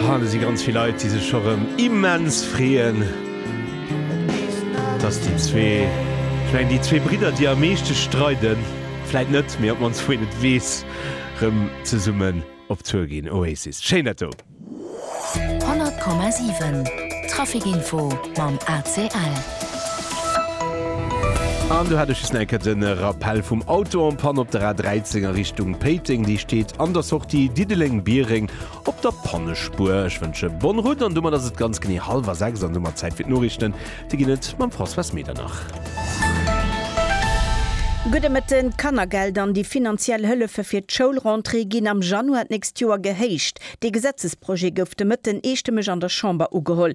Hane si ganz vill Leit, déi sech scho rëm immens freeën, dass déi zwee, vläicht déi zwee Bridder, déi am meeschte streiden, vläicht net, mee op d'mannst wou een et weess, rëm zesummen op Tour ginn. Oasis, schéin dat do! 100,7 Trafic Info mam ACL. An do hat ech just nach eng Kéier den Rappel vum Auto en panne op der A 13 a Richtung Péiteng. Déi steet an der Sortie Diddeleng-Biereng op der Pannespuer. Ech wënsche bonne route an domat ass et ganz genee hallwer 6 an domat Zäit fir d'Noriichten. Déi ginn et mam Françoise Medernach. Gudde Mëtten. D'Kannergeld an déi finanziell Hëllefe fir d'Schoulrentrée ginn am Januar d'nächst Joer gehéicht. Dee Gesetzesprojet gouf de Mëtten eestëmmeg an der Chamber ugeholl.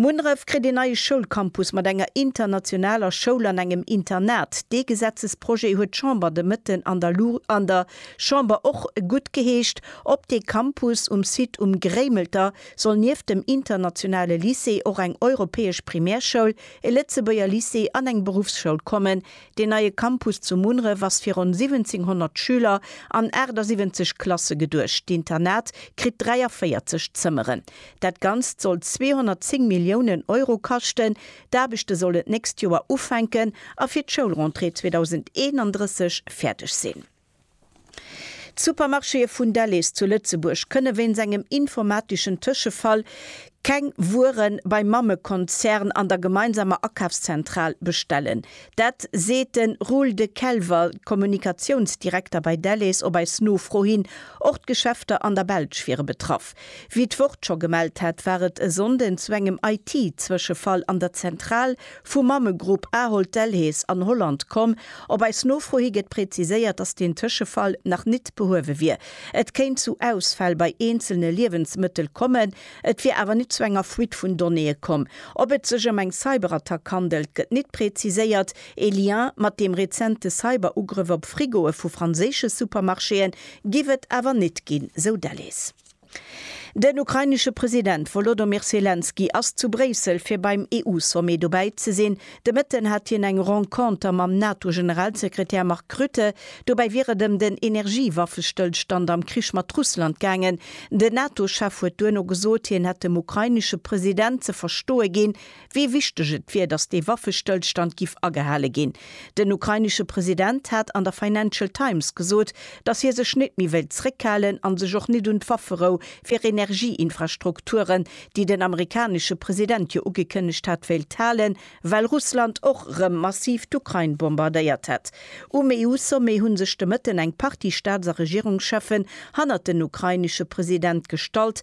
Munneref kritt een neie Schoulcampus mat enger internationaler Schoul an engem Internat. Dee Gesetzesprojet huet d'Chamber de Mëtten an der an der Chamber och guttgeheescht. Op dee Campus um Site Um Gréimelter soll nieft dem internationale Lycée och eng europäesch Primärschoul, e Lëtzebuerger Lycée an eng Beruffsschoul kommen. Deen neie Campus zu Munneref ass fir ronn 1700 Schüler an 78 Klasse geduecht. D'Internat kritt 43 Zëmmeren. Dat Ganzt soll 210 Milliounen Euro kaschten. D'Aarbechte sollen d'nächst Joer ufänken a fir d'Schoulrentrée 2031 fäerdeg sinn. D'Supermarchéë vun Delhaize zu Lëtzebuerg kënne wéinst engem informateschen Tëschefall keng Wuere beim Mammekonzern an der gemeinsamer Akafszentral bestellen. Dat seet de Roel De Kelwer, Kommunikatiounsdirekter bei Delhaize, op eis Nofro hin. Och d'Geschäfter an der Belsch wiere betraff. Wéi d'Wort scho gemellt hat, war et e Sonnden zu engem IT-Zwëschefall an der Zentral vum Mammegrupp Ahold Delhaize an Holland komm. Op eis Nofro hi gëtt präziséiert, dass deen Tëschefall nach nit behuewe wier. Et kéint zu Ausfäll bei eenzelne Liewensmëttel kommen, et wier awer nit zu enger Fuite vun Donnéeë komm. Ob et sech ëm eng Cyberattack handelt, gëtt nit präziséiert. Ee Lien mat deem rezente Cyber-Ugrëff op Frigoe vu franséische Supermarchéë giff et awer nit ginn, sou Delles. Den ukrainesche President Wolodomyr Selenskyj ass zu Bréissel fir beim EU-Sommet dobäi ze sinn. De Mëtten hat hien eng Renconter mam NATO-Generalsekretär Mark Rutte. Dobäi wier et ëm den Energie-Waffestëllstand am Krich mat Russland gaangen. Den NATO-Chef huet duerno gesot, hien hätt dem ukrainesche President ze verstoe ginn, wéi wichteg et wier, datt dee Waffestëllstand giff agehale ginn. Den ukrainesche President hat an der Financial Times gesot, datt hie sech net méi wéilt zréckhalen an sech och net un d'Wafferou fir Energieinfrastrukturen, déi den amerikanesche President jo ugekënnegt hat, wéilt halen, well Russland och erëm massiv d'Ukrain bombardéiert hätt. Um EU-Sommet hu sech de Mëtten eng Partie Staats a Regierungscheffen hannert den ukrainesche President gestallt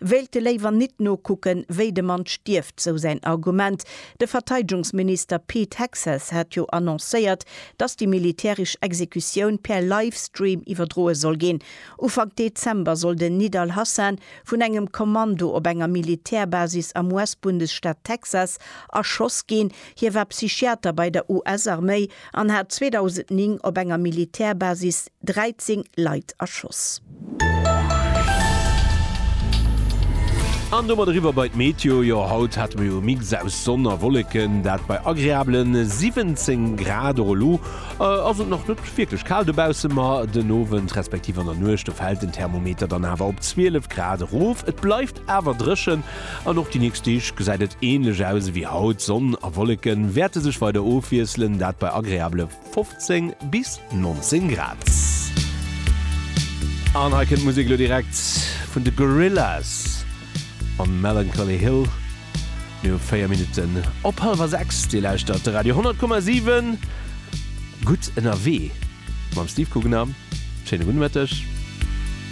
Wéilte léiwer nit nokucken, wéi de Mann stierft, sou säin Argument. De Verteidegungsminister Pete Hegseth hat jo annoncéiert, datt déi militäresch Exekutioun per Livestream iwwerdroe soll ginn. Ufank Dezember soll den Nid al-Hassan vun engem Kommando op enger Militärbasis am US-Bundesstaat Texas erschoss ginn. Hie war Psychiater bei der US-Arméi an hat 2009 op enger Militärbasis 13 Leit erschoss. An domat eriwwer bei d'Meteo. Jo, haut hate mer jo e Mix aus Sonn a Wolleken, dat bei agreabele 17 Grad. Och elo ass et nach net wierklech kal dobausse, ma den Owend respektiv an der Nuecht, do fält den Thermometer dann awer op 12 Grad erof. Et bleift awer dréchen an och déi nächst Deeg gesäit et änlech aus ewéi haut. Sonn a Wolleke wäerte sech weider ofwiesselen, dat bei agreabele. 15 bis 19 Grad. An hei kënnt d'Musek elo direkt vun de Gorillaz an Melancholy Hill. Mir hu 4 Minutten op hallwer 6. Dir lauschtert de Radio 10,7. Gutt ënnerwee mam Steve Guggenham. Schéine gudde Mëtteg.